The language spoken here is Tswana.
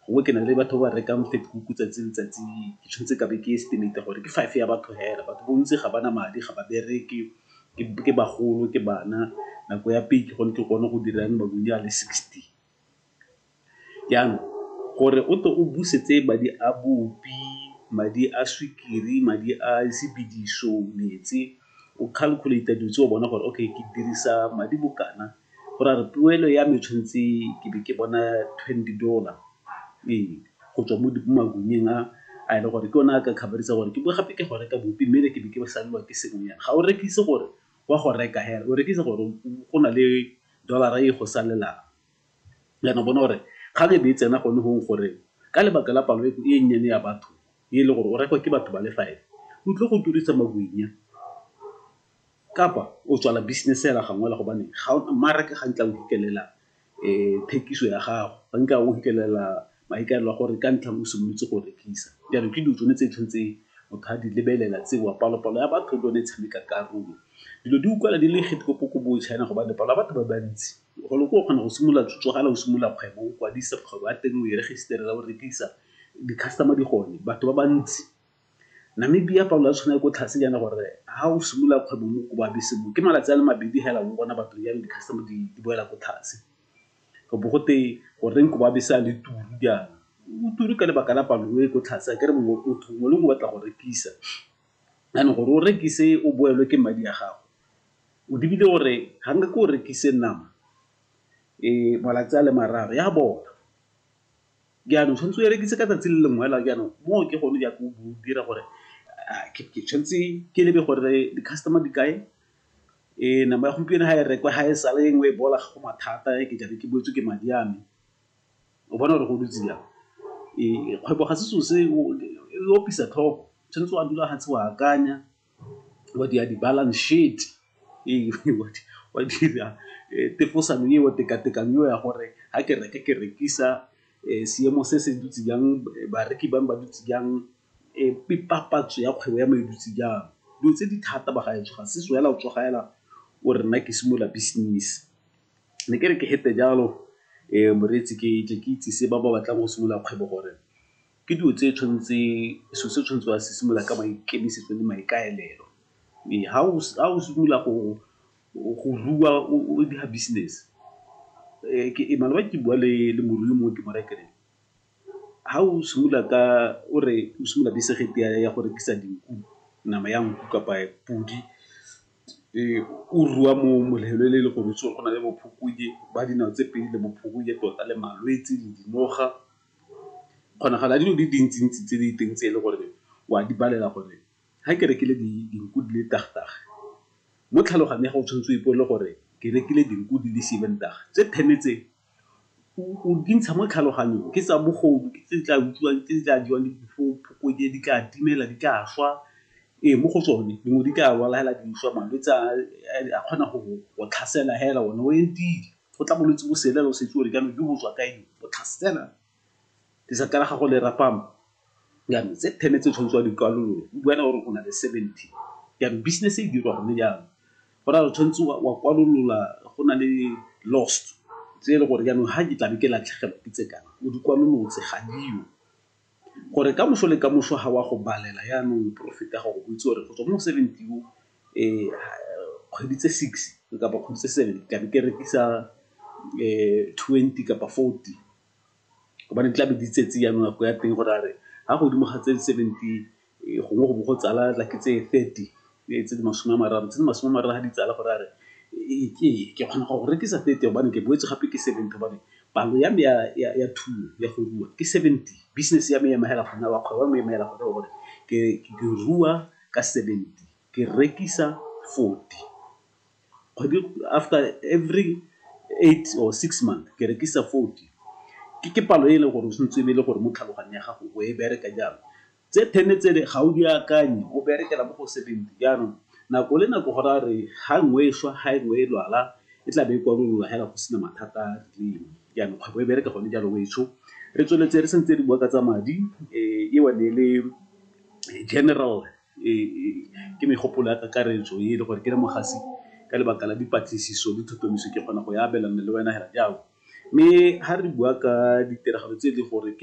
Gongwe ke na le batho ba ba rekang Vetkoek tsatsi le letsatsi, ke tshwanetse ka be ke estimate-a gore ke five ya batho fela. Batho bontsi ga ba na madi, ga ba bereke, ke bagolo, ke bana, nako ya peak gone ke kgone go dira makunya a le sixty. Jaanong, gore o tle o busetse madi a bupi, madi a sukiri, madi a sebediso, metsi, o calculate-a dilo tse o bona gore, okay ke dirisa madi bokana go ra re tuelo ya me tshwanetse ke be ke bona twenty dollar ee go tswa mo makunyeng a a e le gore ke one a ka khabarisa gore ke bo gape ke go reka bopi mme ke be ke salelwa ke sengwenyana ga o rekise gore wa go reka hela o rekisa gore go na le dollar-ra e go salelang yana bona gore kgang e be e tsena gone gong gore ka lebaka la palo e e nnyane ya batho e le gore o rekwa ke batho ba le five o tlile go turisa makunya. Kapa o tswala business hela gangwe hela gobane ga ona mmaraka ga nkitla o hikelela thekiso ya gago, ga nkitla o hikelela maikaelelo a gore ka ntlha o simolotse go rekisa. Jaanong ke dilo tsone tse tshwantse motho a di lebelela tseo, palo-palo ya batho le yone e tshameka karolo. Dilo di utlwala di le China gobane palo ya batho ba bantsi, golo ko o kgona go simolola tsogala o simolola kgwebo, o kwadisa kgwebo ya teng, o e register-ela, o rekisa, di-customer di gone, batho ba bantsi. Namibia, Paulo a tshwana le ko tlhase jaana gore ha o simolola kgwebo mo ko babese mo ke malatsi a le mabedi hela o bona batho jang di-customer di boela ko tlhase. Go bo gote goreng ko babese a le turu jaana, o turu ka lebaka la palo e ko tlhase a kere mongwe motho mongwe le mongwe o batla go rekisa. Jaanong gore o rekise o boelwe ke madi a gago, o lebile gore ga nke ke o rekise nama malatsi a le mararo e a bola. Jaanong tshwanetse o e rekise ka tsatsi le lengwe fela jaanong moo ke gone jaaka o dira gore ke tshwanetse ke lebe gore di-customer di kae, nama ya gompieno ga e rekwa ga e sale e nngwe e bola ga go mathata ke tlabe ke boetswe ke madi a me, o bona gore go dutse jang. Kgwebo ga se selo se e opisa tlhogo, tshwanetse wa dula fatshe wa akanya. wa dira di-balance sheet wa dira tefosano eo, tekatekano eo ya gore ga ke reka ke rekisa seemo se se dutse jang, bareki ba me ba dutse jang, papatso ya kgwebo ya me e dutse jang. Dilo tse di thata bagaetsho ga se fela o tsoga fela o re nna ke simolola business. Ne ke re ke fete jalo moreetsi ke tle ke itsise ba ba batlang go simolola kgwebo gore. Ke dilo tse tshwanetse selo se tshwanetse wa se simolola ka maikemisetso le maikaelelo. Ee, ha o simolola go rua o dira business ke maloba ke bua le morui mongwe ke mo raya ke re, ha o simolola ka o re o simolola ya go rekisa dinku, nama ya nku kapa podi o rua mo e le gore o itse gore go na le bo ba dinawa tse pedi le bo tota le malwetse le dinoga. kgonagalo ya dilo di dintsi-ntsi tse di teng tse e le gore wa di balela gore ga ke rekile dinku di le mo tlhaloganyong ya gago o tshwanetse o ipolele gore ke rekile dinku di le seven tse ten tse o di ntsha mo tlhaloganyong ke tsa bogodu, ke tse di tla utswiwang, ke tse di tla jewang ke diphoko, di tla timela, di tla swa. Ee, mo go tsone dingwe di tla lwala fela di swa, malwetse a kgona go tlhasela fela one o entile. Go tla bolwetse bo selela o setse o re jaanong jo bo tswa kae jo, bo tlhasela lesaka la gago le rapame. Jaanong tse ten tse o tshwanetseng wa di kwalolola, o bua le ene o re o na le seventy. Jaanong business e dirwa gone jaanong, go raya gore o tshwanetse wa kwalolola go na le lost tse e le gore jaanong ha ke tlabe ke latlhegelwa ke tse kana, o di kwalolotse ga diyo. gore kamoso le kamoso ga wa go balela yanong o profit-a gore o itse gore go tswa mo seventy o kgwedi tse six kapa kgwedi tse seven tlabe ke rekisa twenty kapa fourty gobane tlabe di itsetse yanong nako ya teng gore a re fa godimo ga tse seventy gongwe go bo go tsala like tse thirty, tse di masome a mararo. Tse di masome a mararo ga di tsala go raya gore ke kgona go go rekisa thirty gobane ke boetse gape ke seventy gobane palo ya me ya thuo ya go rua ke seventy. Business ya me e ema fela gona wa kgwebo ya me e ema fela gona wa gore ke rua ka seventy, ke rekisa forty. kgwedi after every eight or six month ke rekisa forty. Ke palo e e leng gore o tshwanetse e be e le gore mo tlhaloganyong ya gago o e bereka jalo. Tse ten tse le ga o di akanye o berekela mo go seventy jaanong nako le nako go raya re ha nngwe e swa ha e nngwe e lwala e tla be e kwalolola hela go sena mathata a a rileng. Jaanong kgwebo e bereka gone jalo wetsho. Re tsweletse re santse re bua ka tsa madi eo ne e le general ke megopolo ya kakaretso e le gore ke re mogasi ka lebaka la dipatlisiso le tlhotlhomiso ke kgona go e abelana le wena hela jaana. Mme ha re bua ka ditiragalo tse e leng gore ke